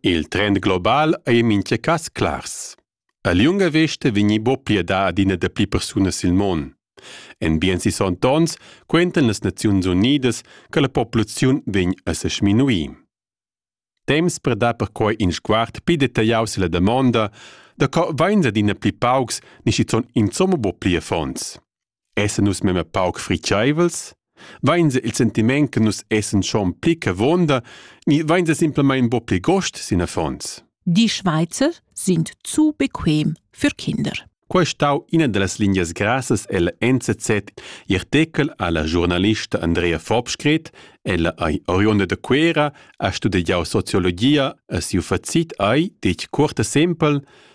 Il trend global ei en mintga cass clars. A liunga vesta vegni buca pliedà adina dapli persunas sil mon. En bien sis onns quentan las Naziuns Unidas che la populaziun vegn a se sminuir. Temps per dar perquai in sguard pli detagliau silla damonda da co vains adina pli paucs ni schizunt insomma buca pli affons. essan nus memia pauc fritscheivels? Vainsa il sentiment che nus essan schon pli che vonda, ni vainsa simplamain bo pli gost sin affons? Die Schweizer sind zu bequem für Kinder. Quai è stau ina dallas lingias grassas ella NZZ i artechel alla giornalista Andrea Fobskret, ella ei oriunda da Cuera, ha studiau sociologia e siu facit ei detg cuorta sempel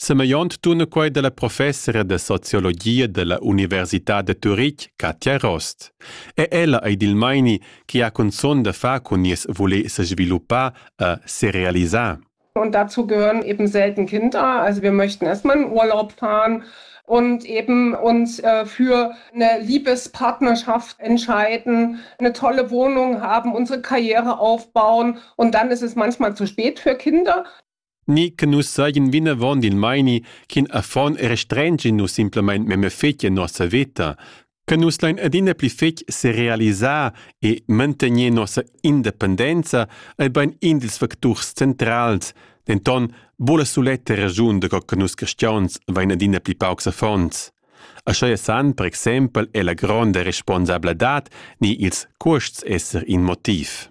Semegliont tuna quei dalla professora da sociologia dalla Università da Turitg, Katja Rost. E ella ei dil meini che ha cunzun da far cun nies voler sesviluppar e serealisar. Und dazu gehören eben selten Kinder. Also wir möchten erstmal in Urlaub fahren und eben uns äh, für eine Liebespartnerschaft entscheiden, eine tolle Wohnung haben, unsere Karriere aufbauen und dann ist es manchmal zu spät für Kinder. ni che nus seigien vinavon dil meini ch'in affon era strengi nus simplamain memia fetg en nossa veta, che nus lein adina pli fetg serealisar e mantegner nossa independenza ei bein in dils facturs centrals, denton buca suletta ragiun da co che nus caschions vein adina pli paucs affons. Aschia san per exempel è la gronda responsabladad ni ils cuosts esser in motiv.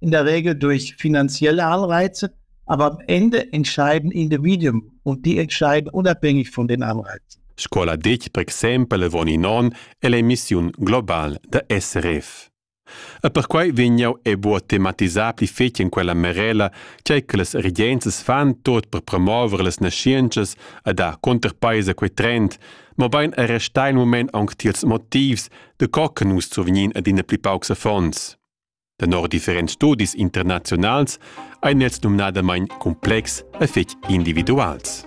In der Regel durch finanzielle Anreize, aber am Ende entscheiden Individuen und die entscheiden unabhängig von den Anreizen. Scola dic, per exempel von i non, è l'emissiun global da SRF. E perquai vegnau e buo tematisà pli fetg in quella merela, tgei che las regenzas fan tot per promover las nascientschas e dar conterpaisa quei trend, mobein er restar in moment aunc tiels motivs, de co che nus survgnin ad ina pli paucs affons. Tenor differents studis internaziunals ein els numnadamain cumplex e fetg individuals.